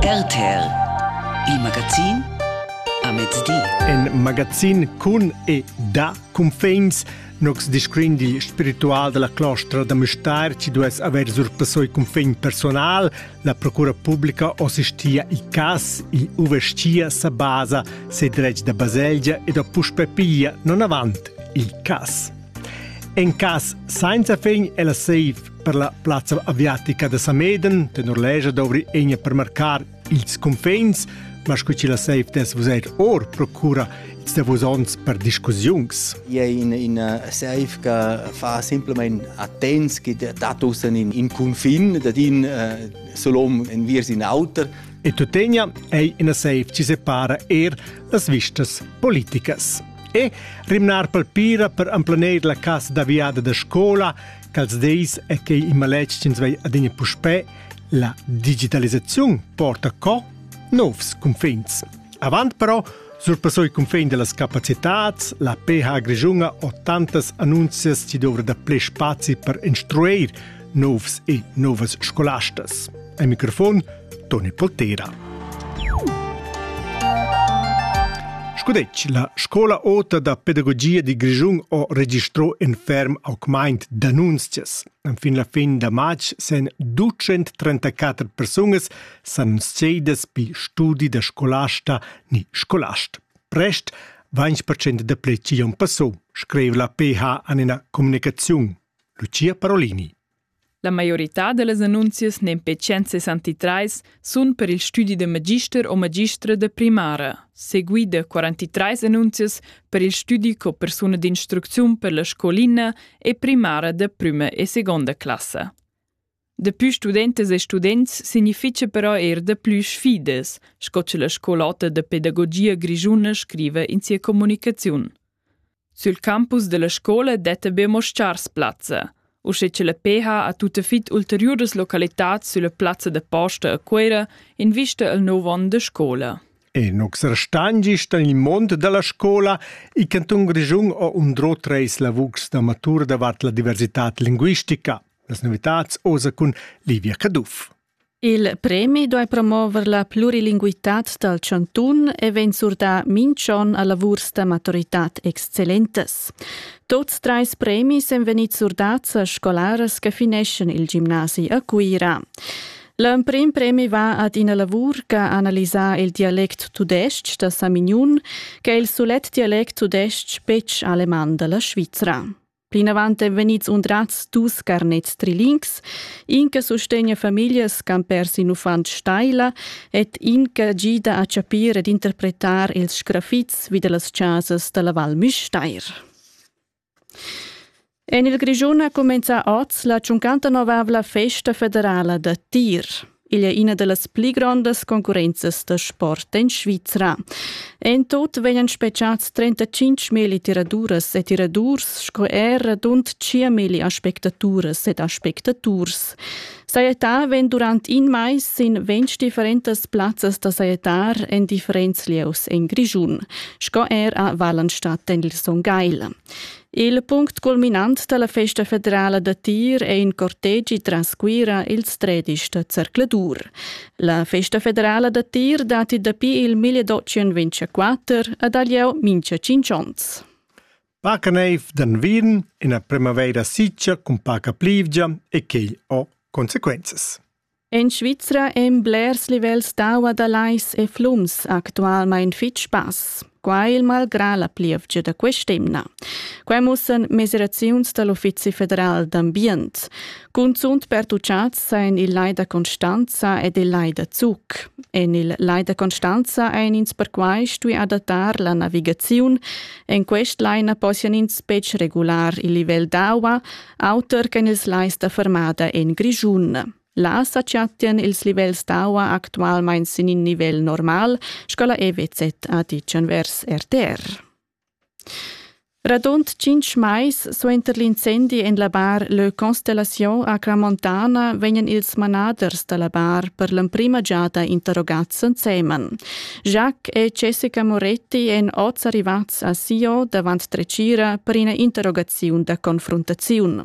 RTL Il magazin a mezdi. In magazin cun e da cunfins Nox discrin digl spiritual della clostra da Mustar ci duess haver surpassoi cunfin personal, la procura pubblica assistia i cas, i uvestia sa basa se dretg da baselgia ed a puspe piglia non avant il cas. En cas senza fin è la safe Per la plazza aviatica da Sameden tenor legia dovri egna per marcar ils cunfins, ma scu chi la seif des vuser or procura ils davos ons per discussiuns. Ia è in, in seif che fa simplement attents che tatussen in, in cunfin, dat in uh, solom en viers in auter. E tuttegna è ina seif ci separa er las vistas politicas. E rimnar palpira per amplaneir la casa d'aviada da scola Quels dis è quei in maletg ch'ins vei adina puspè, la digitalisaziun porta co novs cunfins. Avant però surpassò il cunfin dellas capacitads, la PH Grischunga ho tantas annunzias chi dovra da ple spazi per instrueir novs e novas scolastas. Ein microfon Toni Poltera. Scudec, la scola ota da pedagogia di Grischun ho registrò in ferm augmaint d'annunzias. Fin la fin da march sen 234 persunas s'annunziadas pi studi da scolasta ni scolast. Prest 20% da pleci on passò, scrive la PH an ina comunicaziun. Lucia Parolini. La maiorità da las annunzias nempetschent sessantatrais sun per il stüdi da magister o magistra da primara, seguida 43 annunzias per il stüdi co persuna d'instrucziun per la scolina e primara da prüma e segonda classa. Dapü studentas e students significha però eir daplü sfidas, sco cha la scolotta da pedagogia grischuna scriva in sia comunicaziun. Sül campus della scola detta be mo schars plazza, usche che la PH ha tutta fit ulteriuras localitats sülla plazza da posta a Cuera in vista al nouv on da scola. E nux restangist in il mond dalla scola, il canton Grischun ha undrò treis lavurs da matur davart la diversità linguistica. Las novitats osa cun Livia Caduff. Il premi duai promover la plurilinguitad dal chantun e vegn surdà minch'on a lavurs da maturitad excellentas. Tuts trais premis èn vegnids surdads a scolaras che fineschan il gimnasi a Cuira. L'emprim premi va ad ina lavur che ha analisà il dialect tudestg da Samignun, che è il sulet dialect tudestg betg aleman da la Svizra. Plinavant èn vegnids undrads dus carnets trilings, in che sustegna famiglias ch'han pers in uffant staila ed in che gida a chapir ed interpretar ils sgrafits vi da las chasas da la Val Müstair. En il Grischun ha cumenzà oz la tschuncantanovavla festa federala da tir. Igl è ina da las pli grondas concurrenzas da sport en Svizra. En tut vegnan spetgads 35.000 tiraduras e tiradurs sco er radund 5.000 aspectaturas ed aspectaturs. Sajettar vegn durant in mais sin ventg differentas plazzas da sajettar en differents lieus en Grischun, sco er a Wallenstadt en il Son Gagl. Il punct culminant dalla festa federala da tir è in cortegi tras Cuira ils tredisch da zercladur. La festa federala da tir dati dapi il 1224 ad Alieu mincha 5 ons. Paca neiv d'anvin, ina primavera siccia cun paca plivgia e quei ho consequenzas. En Svizra ein blers livels d'aua da Lais e flums actualmein fetg bass. Quai il malgrà la plievgia da quest'emna. Quai mussan mesiraziuns dal Uffizi federal d'ambient. Cunzunt pertuchads ein il Lai da Constanza ed il Lai da Zug. En il Lai da Constanza ein ins perquai stui adattar la navigaziun. En quest lai na possian ins betg regular il livel d'aua, auter ch'en ils lais da fermada en Grischun. Là sa chattian ils livels d'aua actualmain sin in nivel normal, sco la EWZ ha ditg envers RTR. Radund tschintg mais suenter l'incendi en la bar Le Constellation a Clamontana vegnan ils manaders da la bar per l'emprima giada interrogads ensemen. Jacques e Jessica Moretti èn oz arrivads a Sion davant dretgira per ina interrogaziun da confruntaziun.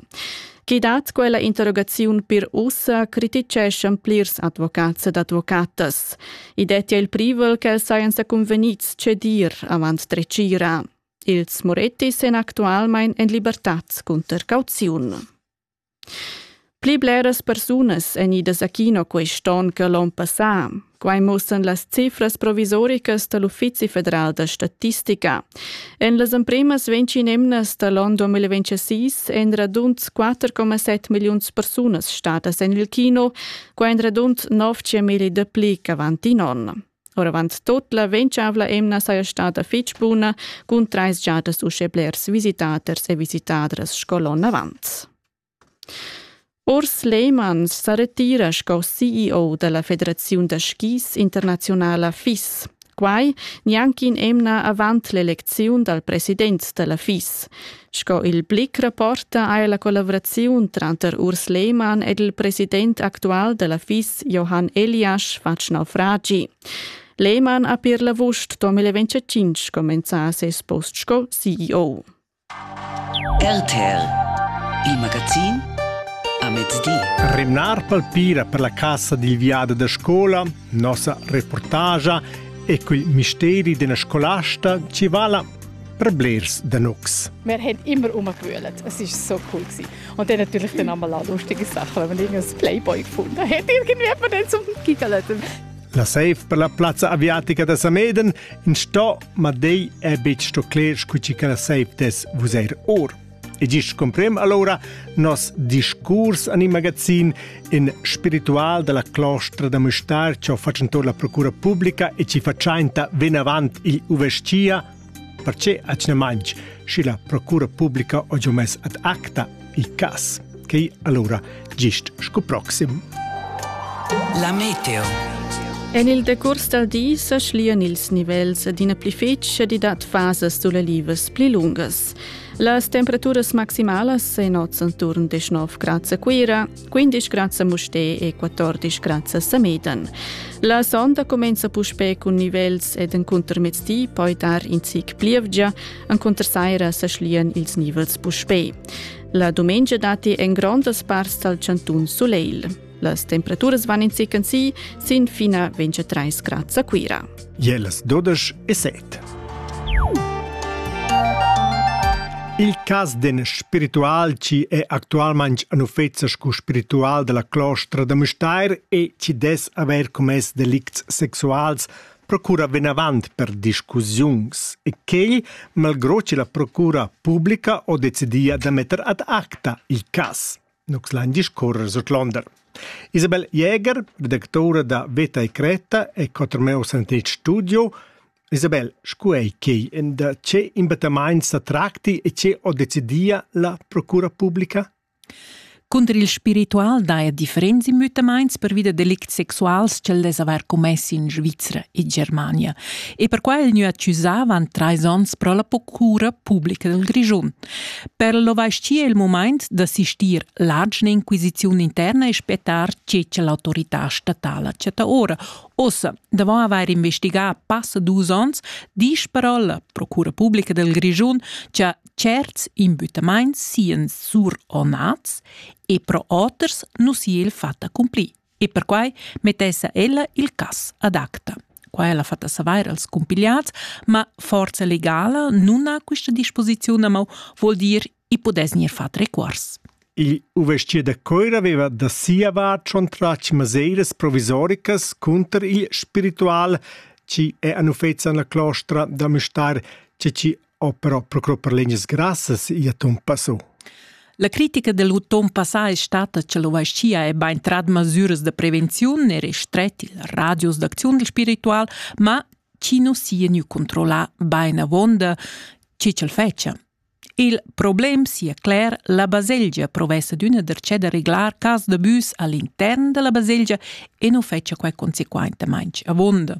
Chi dat quella interrogaziun pir ussa crititgeschan plirs advocats ed advocatas. I dettia il privel ch'els sajan sa cunvegnids cedir avant dretgira. Ils Moretti sen actualmain en libertad cunter cauziun. Pli bleras persunas èn idas a kino quest onn che l'onn passà. Quai mussan las cifras provisoricas da l'Uffizi federal da statistica. En las emprimas 20 emnas da l'onn 2026 èn radund 4,7 milliuns persunas stadas en il kino, quai èn radund 9 000 dapli ch'avant in onn. Oravant tot la ventschavla emna saja stada fitg buna cun trais giadas uschè blers visitaters e visitadras sco l'onn avant. Urs Lehmann sa retira sco CEO dalla Federaziun da skis internaziunala FIS. Quai gnanc in emna avant l'elecziun dal president da la FIS. Sco il Blick rapporta ha la collavraziun tranter Urs Lehmann ed il president actual da la FIS Johann Eliasch fatg naufragi. Lehmann ha per la vusch 2025 comenzà ses post sco CEO. RTL, il magazin a mezdi. Renar palpira per la cassa dil viadi da scola nossa reportagia e quel misteri d'ina scolasta ci vala per blers da nux. Wir haben immer umgewühlt. Es ist so cool gewesen. Und dann natürlich dann einmal auch lustige Sachen, wenn man irgendein Playboy gefunden hat. Irgendwie hat man dann zum Gigalöten. La safe per la plazza aviatica da Sameden in sto ma dei è bit sto cler scu ci che la safe des vus er or. E gist cumprem allora nos discurs en il magazin in spiritual della clostra da Mustar che ho fatgentor la procura pubblica e ci faciainta venavant il uvescia perché acna manch schi la procura pubblica ho mes ad acta il cas che allora gist sco proxim. La meteo En il decurs dal di sa schlian ils nivels d'ina pli fetg e di dat fasas sulelivas pli lungas. Las temperaturas maximalas en oz enturn 19 grads a Cuira, 15 grads a Mustè e 14 grads a Samedan. La sonda comenza puspè cun nivels ed encunter mezdi poi dar in zic plievgia, encunter saira sa schlian ils nivels puspè. La dumengia datti en grondas parts dal chantun sulegl. Las temperaturas van in zic si sin fina 23 grad a Cuira. Je las 12 e 7. Il cas d'en spiritual ci è actualmente un uffezo scu spiritual della clostra da Mustair e ci des aver commess delicts sexuals procura venavant per discussiuns e quel, malgrò ci la procura pubblica, ho decidia da metter ad acta il cas. Nus lain discurrer sur l'onda. Isabel Jäger, redactora da Veta e Creta e Cotrameus en tes studio. Isabel, scu ei quei? En da che imbattamaint sa tracti e che ho decidia la procura publica? Cunter il spiritual daja differents immüttamaints pervi da delicts sexuals ch'el dess avair commess in Svizra e Germania e per quai el gnü accusà avant trais ons pro la procura publica dal Grischun. Per l'ovaschier il mumaint d'assistir l'agina inquisiziun interna e spettar tge che l'autorità statala chatta ora. Ossa, davant avair investigà passa dus ons, disch però la Procura Publica del Grischun cha certs imbüttamaints sian suronats e pro oters nu sia il fatt accumplir. E perquai mettessa ella il cass adacta. Qua ella fatta savair als cumpigliats, ma forza legala non ha questa disposizione, ma vuol dir i podess gnir fat requars. Il uvestier da Coira aveva da sia vart schon tratg maseiras provisoricas cunter il spiritual, ci è anufezza la clostra da Müstair, ci ci o però procuro per legnas grassas ia ton passò. La critica del ton passà è stata che l'ovascia è ben trad masuras de prevenziun e restret il radius d'acziun del spiritual, ma chi no sia gnü controllà ben avonda chi c'el fece. Il problem sia cler, la baselgia provessa d'una dercè da reglar cas de bus all'intern della baselgia e non fece quai consequentemente avonda.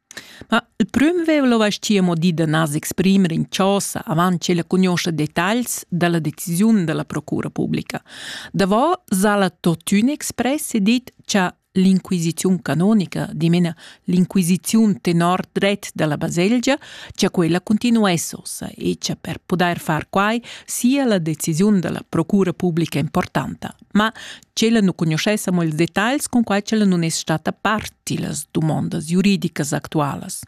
Ma il prüm vev'el avais ti amo dit da nas exprimer in chosa avant che la cugnuoscha detagls da la decisiun da la procura publica. Davo s'ha'la tuottün express e dit cha l'inquisiziun canonica, dimena l'inquisiziun tenor dret da la baselgia, cha quella continuess ossa e cha per pudair far quai sia la decisiun da la procura publica importanta. Ma ch'ella nu cugnuschessa mo ils detagls cun quai ch'ella nun es stata part tillas dumondas juridicas actualas.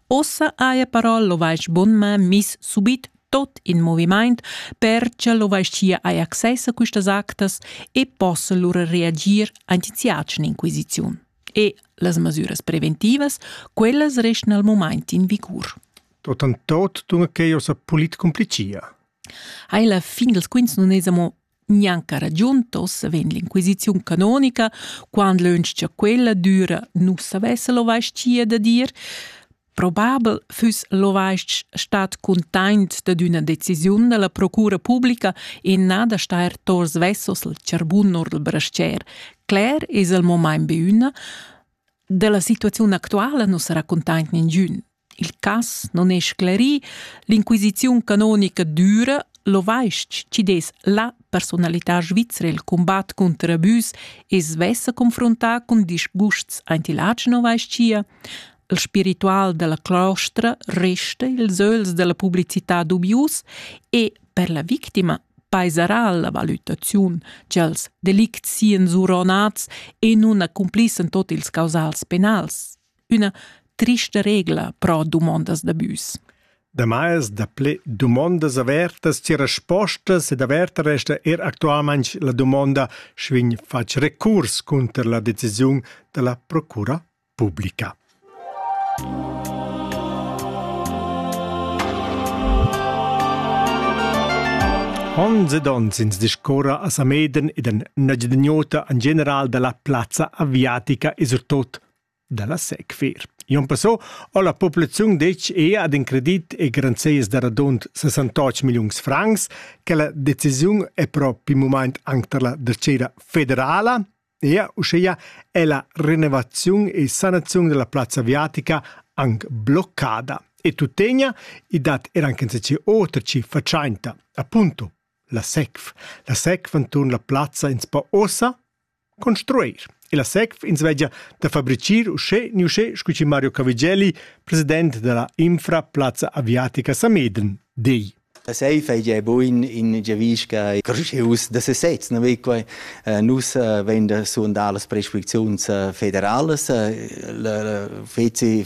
Ossa haja però l'ovais bunma miss subit tot in movimaint per cha l'ovaischia haja access a quistas actas e possa lura reagir ant in siatschna inquisiziun. E las masüras preventivas, quellas restan al momaint in vicur. Tot an tot dunque eir sa polit complicia. Hai la fin dels quints nun es amo Gnanca ragiuntos vegn l'inquisiziun canonica, quand lönch cha quella düra nu savess l'ovaschia da dir, probabel füss l'ovasch stat cuntaint dad üna decisiun da la procura publica e na da stair tos vessos al charbun or dal brascher. Cler es el momain be üna, da la situaziun actuala nu sarà cuntaint ningün. Il cass non è sclerì, l'inquisiziun canonica düra l'ovais-ch chi dess la personalità svizra il combat cunter abüs e svessa confrontà cun disgusts aint il Agen ovais-chia. Il spiritual della clostra resta ils öls della publicità dubius e per la victima paisarà la valutaziun ch'els delicts sian zuronats e nun accumplissen tot ils causals penals. Üna trista regla pro dumondas da büs. Damais daplè dumondas avertas ci respostas ed averta resta er actualmain la dumonda sch'vin fac recurs cunter la decisiun da la procura pubblica. Ons ed ons ins discorra a Sameden ed an Nagydnyota an general da la plazza aviatica e surtot dalla Sequer. Jon Passot ho la populaziun detg ea ad in credit e garanzias da radund 68 milliuns francs che la decisiun è propi moment anche per la dacera federala ea uschea è la rinnovaziun e sanazione della plazza aviatica anche bloccada e tuttegna i dat er anche in otra cifra tschenta appunto la SECF. La SECF anturn la plazza ins po ossa Construir. Illa SECF ins vegia da fabrichir uschè ni uschè scu chi Mario Cavigelli, president da la Infra Plazza Aviatica Sameden, di. Da safe ei ja buin in giavisca cruschius da sesez, no vei quai uh, nus uh, vegn da suondar las prescripziuns uh, federalas, uh, la feci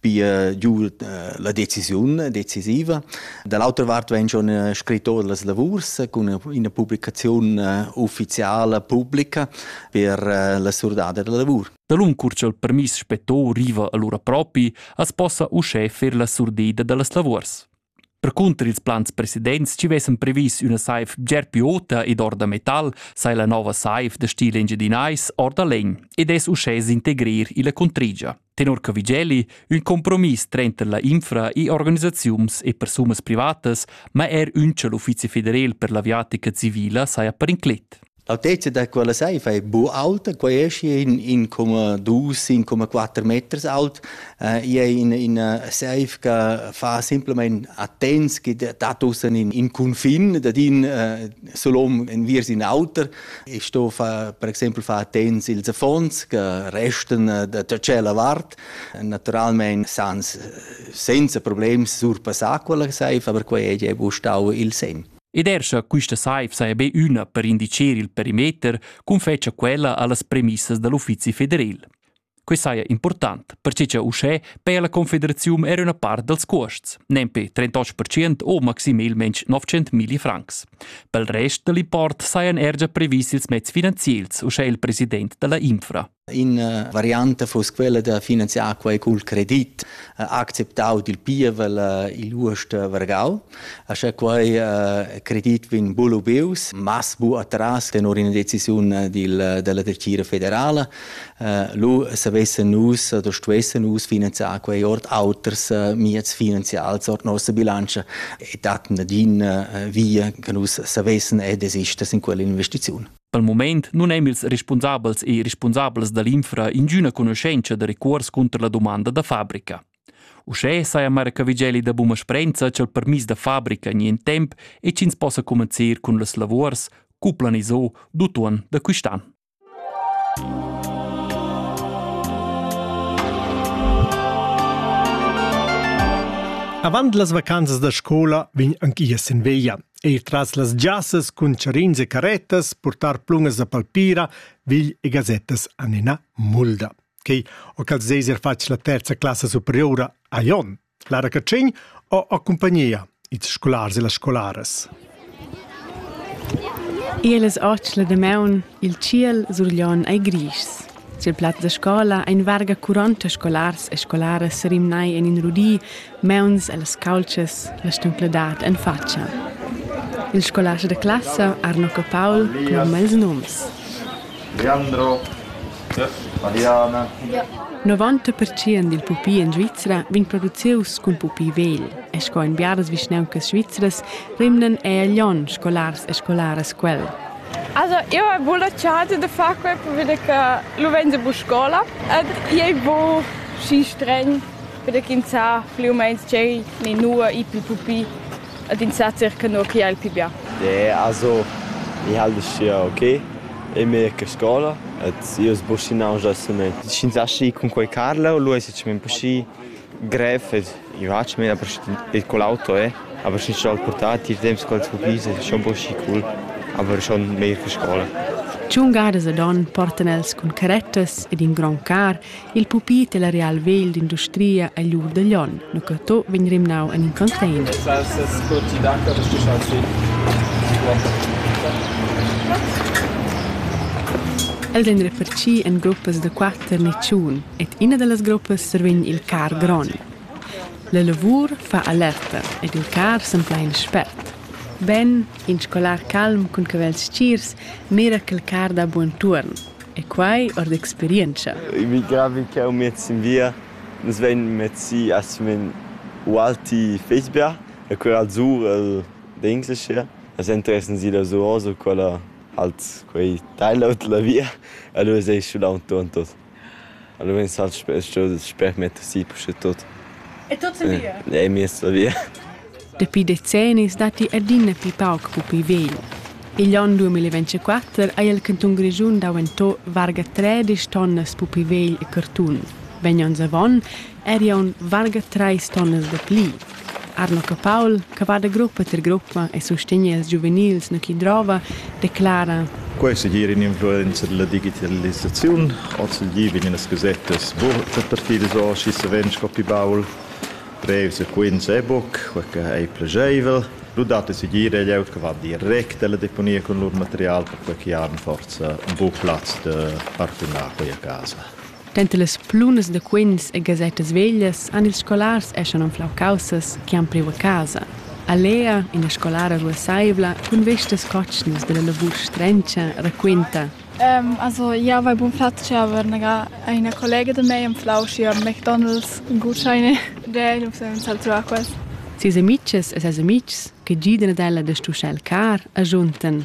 pia giu eh, la decisiun decisiva. Dall'autra vart vegn schon eh, scritto las lavurs cun ina publicazione eh, ufficiale pubblica per la surdada della lavur. Talun cur ch'el permiss spetto riva allura propi, as possa uschè fer la surdeda dallas lavurs. Percunter ils plans presidents ci vessan previs üna saiv bger più ota ed or da metal, sai la nova saiv da stil engiadinais or da legn ed es uschè s'integrir illa contrigia. Tenor Cavigelli, ün compromiss trenter la infra e organisaziuns e persunas privatas, ma er ün l'Uffizi federal per l'aviatica civila saja per inclet. L'altezza da quella saifa è bu auta, quai è schi in 1,2-1,4 meters aut. Äh, I è in, in saif che fa simplement attents che dat ussen in, in confin, dat in äh, solom enviers in auter. Ich sto fa, per exempel fa attents ils affons che resten äh, da tacella vart. Naturalmente sans, senza problems surpassà quella saifa, aber quai è bu stau il sen. Ed er sche quista saiv saja be üna per indicher il perimeter, confetscha quella a las premissas da l'Uffizi federal. Quai saja important, perche cha uschè per la Confederaziun era üna part dals cuosts, nempe 38% o maximelmente 900.000 francs. Pel rest da l'import sajan er già previs ils mezs finanziels, uschè il president da la Infra. Ina varianta fuss quella da finanziar quei cul credit, acceptau dil pievel igl uost Vargau. Sche quei credit vegn bulubius, mas bu atras tenor ina decisiun dil, dalla Dretgira federala, lu savessen nus oder stuessen nus finanziar quei ord auters mieds finanzials ord nossa bilanza e dat nadin via che nus savessen e desister sin quella investiziun. Dal mument nun èn ils respunsabels e respunsabels da l'infra ingüna conoschentscha da recuors cunter la dumanda da fabrica. Uschè saja Marca Vigeli da buna sprenza cha'l permis da fabrica gnien temp e ch'ins possa comencer cun las lavors, cu planiso, d'utuon da quist'an. Avant las vacanzas da scola vegn anc ia sin veglia. Eir tras las giassas cun charins e carettas portar plungas da palpira vigl e gazettas an ina mulda. Quei o ch'als eis fatg la terza classa superiora a Jon, Lara Catschin o a compagnia ils scolars e las scolaras. Elas otg la damaun il tschiel sur Jon ei grischs. Sil plat da scola ein varga 40 scolars e scolaras serimnai en in rudi, meuns e las caultschas, la stuncladad en fatscha. Il scolast da classa Arnocco Paul cloma ils noms. Leandro, Mariana. 90% dil pupi en Svizra vegn producius cun pupi vegl e sco en biaras vischnauncas svizras rimnan ei a Lyon scolars e scolaras quel. Also, io hai buca la chasa da far quei perché che lu vegn buca scola ed i ei buca schi stregn perché ins sa pli u meins ch'ei ni nua i pli pupi ed ins sa circa nua che ei il pi bia. Nee, also ich halte es ja okay. E mir che scola ed io sbuschi nauscha assolutamente. Sch'ins aschi cun quei Carlo, lu ei secimento schi Grev es i fatg mez e cul auto eh, aber schi scho'l portatil il temps ch'els vugis es schon bod schi cool, aber schon meglier che scoula. Tschungadas ed on portan els cun carettas ed in grond car il pupit e la real vegl d'industria a lur da Lyon, nu che to vegn rimnau en in container. Els ein refarci en gruppas da quatter niciun, Ed ina da las gruppas survegn il car grond. La lavur fa alerta ed il car s'emplain spert. Ben, in scolar calm cun cavels stgirs mira quel car da buontuorn. E quai or d'experientscha. I vi gravi che jau met sin via. Nus vegn mezzi assimen ualti Fecberg e quel al sur el d'Englishire. Las interessan si da Suoso, quella halt quei teilaut la via. Allora sei schulau entochen tot. Alura vegn sper metter si puschetut. E tuts en via? E miez la via. Dapi decennis datti adina pli pauc pupi vegl. Igl onn 2024 ha il cantun Grischun daventà varga tredisch tonnas pupi vegl e cartun. Vegn onns avon eri aunc varga trais tonnas da pli. Arno Capaul, che va da gruppa ter gruppa e sustegna ils giuvenils no chi drova, declara, Quai è segir in'influenza da la digitalisaziun. Ozendi vegnan gasettas burtas partidas or, schi savens sco pi baul. Brevs e quints è buc quei che ei plageivel. Lu dat ei segir ei glieud che va direct alla deponia cun lur material, perquei che han forsa buc plaz da partunar quei a casa. Denter las plunas da quints e gasettas veglias han ils scolars eschan anflau caussas che han priu a casa. A Lea, ina scolara ruasseivla cun vestas cotschnas dalla lavur strenscha, raquinta. Also, jau vai bun flatg aber eine collega da mei anflau sia McDonald's Gutscheine. Der nus haben salzau quels. Ses amitgs e ses amitgs che gidan ad ella da stuschar il car, agiuntan.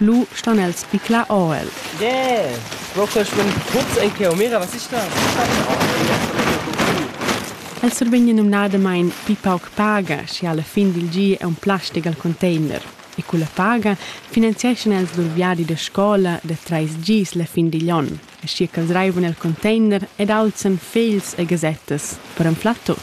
Lu stan els picla or el. Yeah! Rochel schwimmt tuts ei cheu. Mira, was ist das? El survegn numnadamain pli pauc paga, sche a la fin dil gi è un plastic al container. E culla paga finanzieschan els lur viadi da scola da trais gis la fin digl onn. aschia ch'els reivan el container ed alzan fegls e gasettas per anflar tut.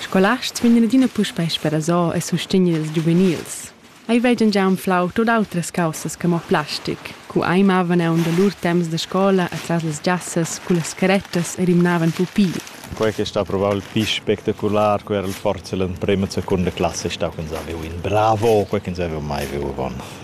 Scolasts vegnan adina puspei sperasò e sustegner ils giuvenils. Ei vegan gia anflau tut autras caussas che mo plastic. Cu ei mavan aunc da lur temps da scola atras las giassas cullas carettas e rimnavan pupi. Quei che sta probabel pli spectacular cu era il forza l'emprema e seconda classa ei stau ch'ins havev in bravo, quei ch'ins haveva mai viu avon.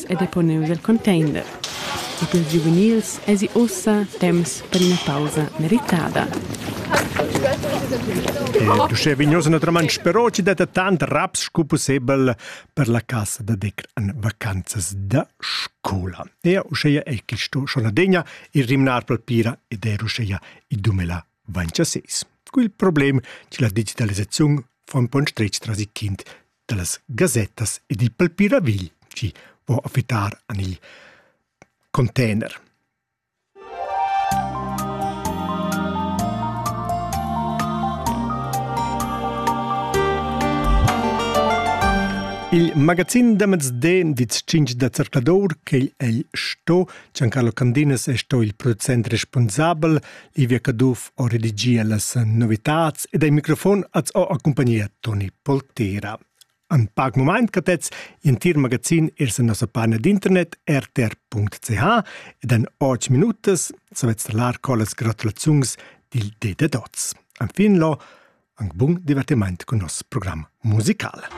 ed ha poneus el contender. E pils giuvenils èsi ussa temps per ina pausa meritada. L'uschè vignos naturalmain però ci detta tant raps sco pussebel per la casa da decr en vacanzas da scola. E uscheia è quisto sonadegna il rimnar palpira ed er uscheia i dumela vancia seis. Cu il problem che la digitalisaziun fa un po' strich tras i kind dallas gasettas ed il palpiravigl chi vo a fittar an il container. Il magazin da mezden di 5 da zercladur che el sto Giancarlo Candinas è sto il producent responsabel, Ivia Caduff ho redigia las novitats ed ei microfon az ho accumpagnia Toni Poltera. An pac moment catets in tir magazin ers in nossa pagina d'internet rtr.ch ed an 8 minutas savetz talar collas gratulaziuns dil Dete Dots. An fin lo, ang bun divertiment con nos program musicale.